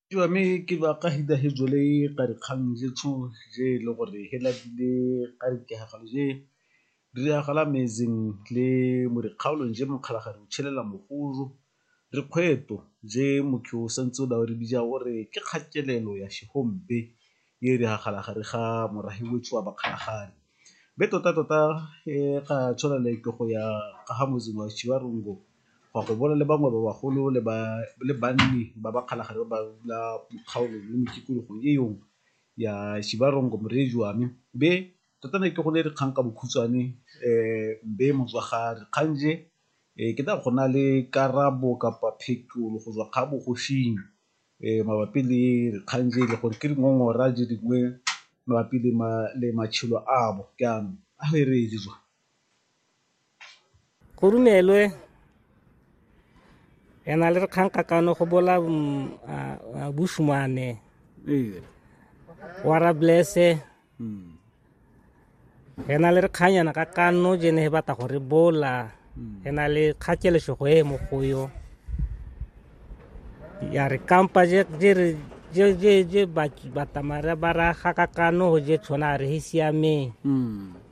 Ke ba me ke ba ka hida he jole ka dikgang je tsho je le gore he la dile ka re ke ha galo je di ya gala metseng le mo dikgaolong je mokgala ga re tshelela mogolo re kgwetlho je motho o santse o dira gore ke kgatelelo ya se . e e diragala gare ga morahi wetsho wa Bakgalagadi. Mme tota-tota e ga tshwana le ke go ya ka ga motseng wa Chiwarongo go ya go bona le bangwe ba bagolo le ba le banni ba Bakgalagadi ba ba dula mo kgaolong le mo tikologong e yong ya Chiwarongo Morejoame. Mme tota ne ke go ne dikgang ka bokhutshwane mme motswagadi kgang je e ke tla go na le karabo kapa phetolo go tswa ga bogoshing. mabapi le dikgang tse e le gore ke dingongora di dingwe mabapi le matshelo a bo jaanong a e re e jwa go rumelwe ena le re kgang kakano go bola mm, bushmane wara blesse mm. re na le re kganyana ka kanno je ne e batla go re bola mm. re na le kgatšelesego e mo go yo ya re kampa je re je je je ba ba tamara ba ra ga ka kano ho je tshwana re hi siame mm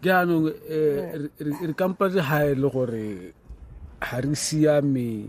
jaanong eh, eh. re kampa je ha e le gore ha re siame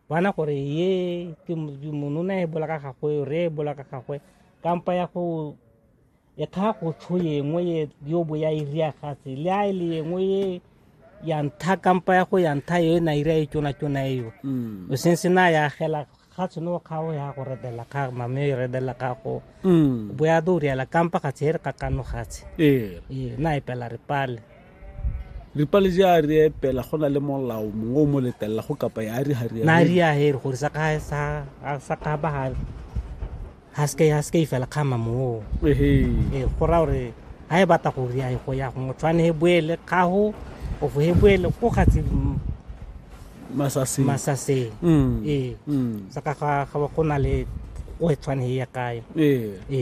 bana gore ye ke monona e bola ka gagwe re e bola ka gagwe kampa ya go e kga go tsho yengwe ye yo bo ya iria gatse le a e le yengwe ye ya ntha kampa ya go ya ntha yo e na iria e tsona tsona eo mm. o seng se na ya gela ga tshono ga o ya go redela ga mame e redela ga go mm. bo ya do riela kampa ga tsere ka kano gatse ee. ee na e pela re pale ripalesi a re epela go na le molao mongwe o mo letelela go kapa ya re ga na re ya here gore sa ka sa sa ka ba ha ha se ya se fela khama mo ehe e go ra gore ha e batla go ri ya go ya go motshwane he boele ka ho o fo he boele go gatse masase masase mm e mm sa ka ga go na le o e tshwane ya kae e e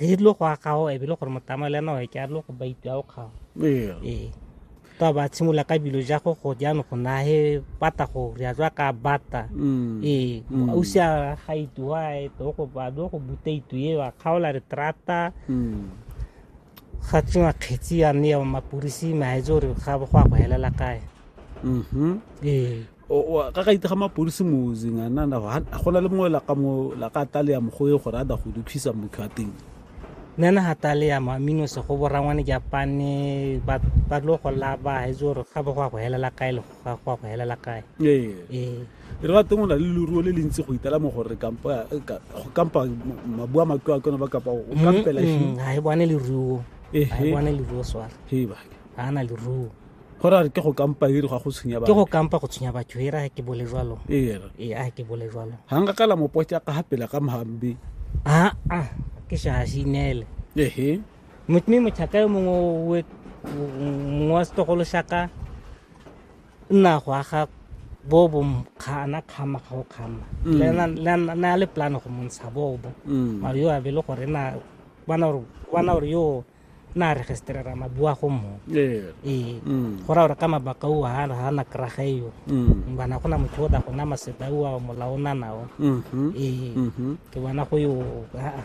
re tlo go agago e bile gore motama le ena ke a tlo go baiti a o kgago ee ta ba tshimolola ka bilo ja go go jaanong go na he bata go re a tswa ka bata mm. ee mm. o se a ga ituwa e to go ba do go buta itu e wa kgaola re trata mm. ga tsewa kgetsi ya mme ya mapodisi maetse gore ga go a go helela kae mm-hmm. ee ka ga itega mapodisi mozeng a nana go na le mongwe laka mo laka tale ya mogoe gore a da go dukhisa motho a teng nana ga tale ya mo amino se go borangwane japane ba tlo go laba ga itse gore ga go a go helela kae le go ya go elela kae ee. ee re ga teng o na le leruo le le ntsi go itela mo gore kampa eh, go kampa mabua matlo a kone ba kapa o mm, kampela ga mm, e bone leruo ga e bone leruo swala ga a na leruo go ra ke go kampa ere ga go tshwenya batho ke go kampa go tshwenya batho ere ga ke bole jalo ee ga ke bole jalo ga nka kala mopotsa ka ga pela ka mahambe aa ke shasinele ehe mme motlhaka yo mongwe mongwe wa setogolo shaka nna go aga bo bo kgana kgama ga o kgama mm. le na le plan go montsha bobo mm. mare yo a be le gore na bona gore yo na registrera mabua go mo ee mm. go ra gore ka mabaka o ha ha na kraga yo bana go na motho o da go na maseta o molao na nao mm-hmm. ee mm-hmm. ke bona go yo a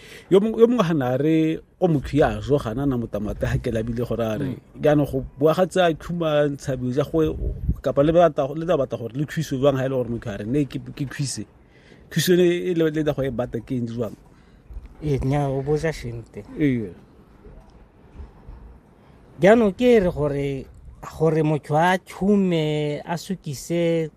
yo mongwe ga na re o motho ya zo gana na motamata ha ke labile gore a re jaanong go bua ga tsa khuma ntshabi ja go kapa le batla le tla batla gore le khwiso jwang ha ile gore motho a re ne ke ke khwise khwiso ne e le le go e bata ke eng jwang e nya o boja shinte ee jaanong ke re gore gore motho a tshume a sukise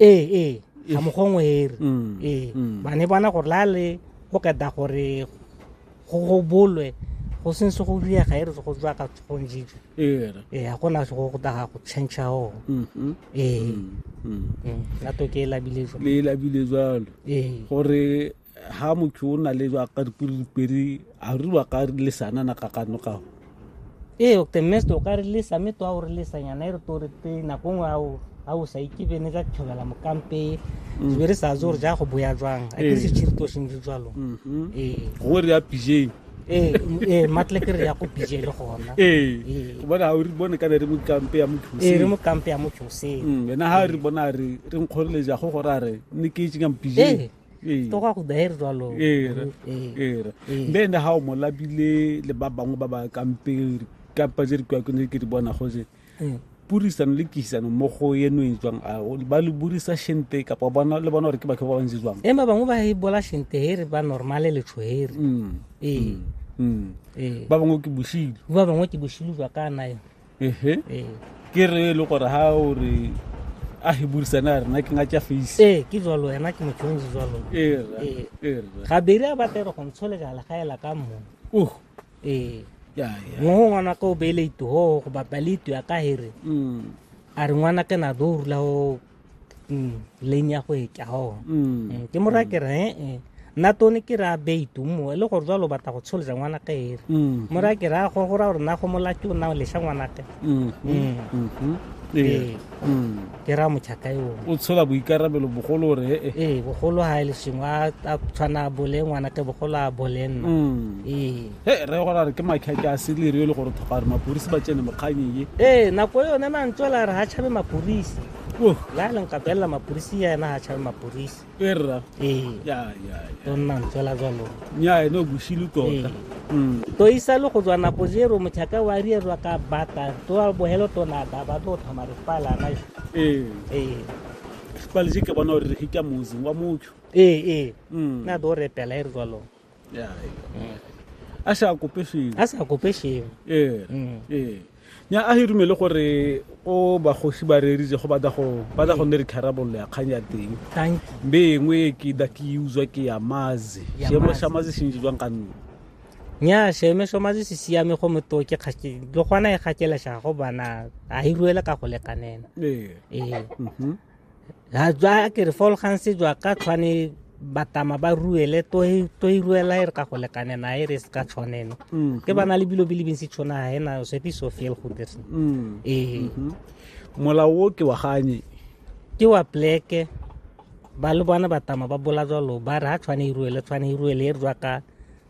ee ee ga mogongwe ere mm, ee mm. ba ne bona gore la le go keda gore go go bolwe go seng se go diega e re se go tswa ka tshogong jeje ee ga gona se go go daga go change o mm-hmm. ee mm, mm. mm, lato ke e labile jalo le e labile jalo ee gore ha motho o na le jwa ka dipedi a re wa ka lesana na ka kano ka ee o te mest o ka re lesa me to a o re lesa nyana e re to re te na go ngwa o a o sa ikibe ne ka tshobela mokampe mm. be re sa zo re ja go boya jwang a ke se tshirito seng le jwalo mm-hmm. ee go re ya pijeng ee ee matle ke re ya go pije le gona ee, ee. o bona o re bone ka re mo kampe ya motho se ee, re mo kampe ya motho se mm, wena ha re bona re re nkgorele ja go go ra re ne ke itse ka mpije ee. Ee. to go ya go daer jalo Era, Ee. era. Ee. Mme ene ha o mo labile le ba bangwe ba ba kamperi kampa je re kwa kone ke di bona go je. Ee. Purisano le kihisano mo go eno e jwang a o- ba le burisa shente kapa bona le bona gore ke batho ba bantsi jwang. e ba bangwe ba e bola shente he re ba normale letsho he re Mm. ee Mm. ee Ba bangwe ke boshilo. ba bangwe ke boshilo jwa ka nayo ehe ee ke re e le gore ha o re a he burisane a rena ke nga tša face ee ke jalo ena ke mochonji jalo era Ee. era gabedi a batlega go ntsholega legaela ka mmo uh ee ya ya mo go ngwana ka o beele itugo go bapale itu ya ka here mm a re ngwana ke na do rula go mm, lane ya go e ka o mm. eh, ke mo ra ke re eh, eh. nna tone ke ra beitu mo e le gore jalo batla go tsholisa ngwana ka ere mm. mo ra ke ra go go ra gore na go molaki o na o lesha ngwana ka mm-hmm. ee. ke ra mochaka yo o tshola boikarabelo bogolo re ee bogolo ha e le sengwa a tshwana bole ngwana ke bogolo a bole nna ee he re gona re ke makheke a seleri e le gore tlhoka gore mapodisi ba tsene mokganyeng e ee nako e yone mantso a la re ga tšhabe mapodisi la leng ka belela mapodisi ya ena ga tšhabe mapodisi e rra ee tonna ntso la jalo nya ene o bosile tota mm. to isa le go tswa nako jero motlhaka wa rierwa ka bata to wa bohelo tona ba ba to thoma re pala na ee ee pale je ke bona gore re ke ka mozing wa motho ee ee mm. na do re pela e re jalo ya a sa kope sengwe a sa kope sengwe ee mm. ee nya a hirumele gore o bagosi ba reritse go batla go batla go nne re tharabololo ya kgang ya teng be engwe ke da ke uzwa ke ya mazi seemo sa mazi se ntse jwang ka nne nya seemo sa mazi se siame go moto ke kgake le gona e gakela shago bana a hiruele ka go lekanena ee ee mhm. ha jwa ke re fol gantsi jwa ka tshwane batama ba ruele to e, e ruela e re ka go lekane na e re se ka tshwaneno mm. ke bana le bilo bile bintsi tshwana ha ena se pi so fiel go dirse mm. e eh. mm-hmm. mola o ke wa ganye ke wa pleke ba le bona batama ba bola jalo ba re ha tshwane e ruele tshwane e ruele e re jwa ka